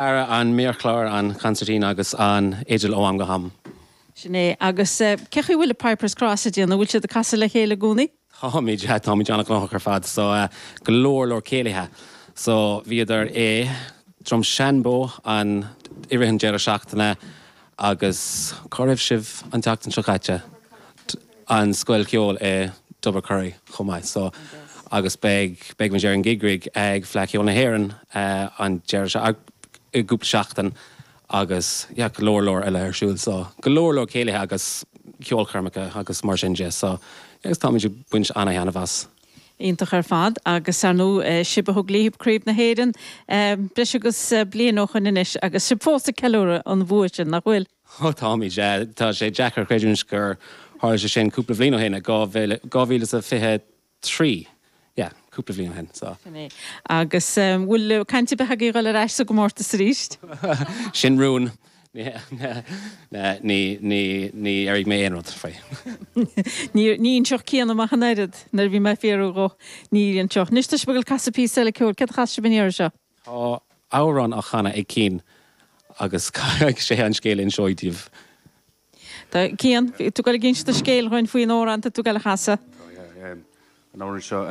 ar an méarchlár, an concertina agus an fhidil ó am go ham. Sin é. Agus cé chaoi a bhfuil Piper's Cross ag déanamh? An bhfuil siad ag casadh le chéile i gcónaí? Táimid, táimid an-ghnóthach ar fad. So, go leor leor céilithe. So, bhíodar i nDroim Seanbhó an, i rith an deireadh seachtaine agus cá raibh sibh an tseachtain seo caite?. an scoil cheoil i dTobar an Choire chomh maith so agus beidh beidh muid ar an gig rig ag Fleadh Cheoil na hÉireann an Déardaoin seo i gcúpla seachtain agus yeah go leor leor eile ar siúl so go leor leor céilithe agus ceolchoirmeacha agus mar sin de so yeah táimid ag baint ana-thaitneamh as. Iontach ar fad agus ar ndú sibh a thug libh Craobh na hÉireann breis agus bliain ó shoin anois agus sibh fós ag ceiliúradh an bhua sin nach bhfuil? Ó, táimid. Tá sé deacair a chreidiúint gur tharla sé sin cúpla bhliain ó shin, i 2023. Yeah, cúpla bhliain ó shin. So. Sin é. Agus an bhfuil caint ar bith agaibh dul ar ais sa gcomórtas arís? Sin rún. Ní airigh mé aon rud faoi. Ní anseo céanna amach an oiread. Nuair a bhí mé ag fiafraí dhó, ní inseodh. Anois, tá sibh ag casadh píosa eile ceoil. Céard a chasfas sibh an iarraidh seo? Tá amhrán á chanadh ag Cian agus caithfidh sé an scéal a inseacht daoibh. Tá, Cian, bhí tú ag dul ag inse do scéil dhúinn faoin amhrán atá tú ag dul a chasadh. Tá, yeah. An amhrán seo,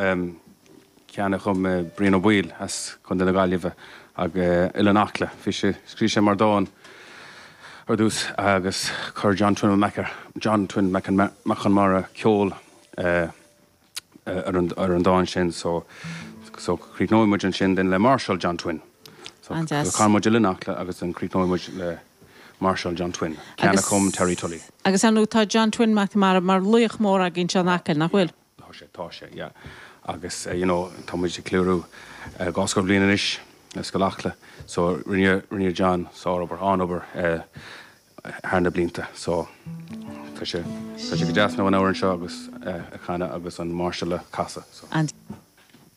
ceann a chum Brian Ó Baoill as Contae na Gaillimhe, Oileán Acla. Bhí sé, scríobh sé mar dhán ar dtús agus chuir John Twin Mac an John Twin Mac an Mac Conmara ceol ar an dán sin so so críochnóidh muid ansin then le Máirseáil John Twin so so canfaidh muid Oileán Acla agus then críochnóidh muid le Máirseáil John Twin ceann a chum Terry Tully. Agus ar ndóigh tá John Twin McNamara mar laoch mór againn seo in Acaill nach bhfuil? Tá sé tá sé yeah agus you know tá muid ag ceiliúradh dhá scór bliain anois le Scoil Acla so rinne rinne John sár obair an-obair thar na blianta. So, tá sé, tá sé go deas now an t-amhrán seo agus eh, a chanadh agus an mháirseáil a chasadh. So. An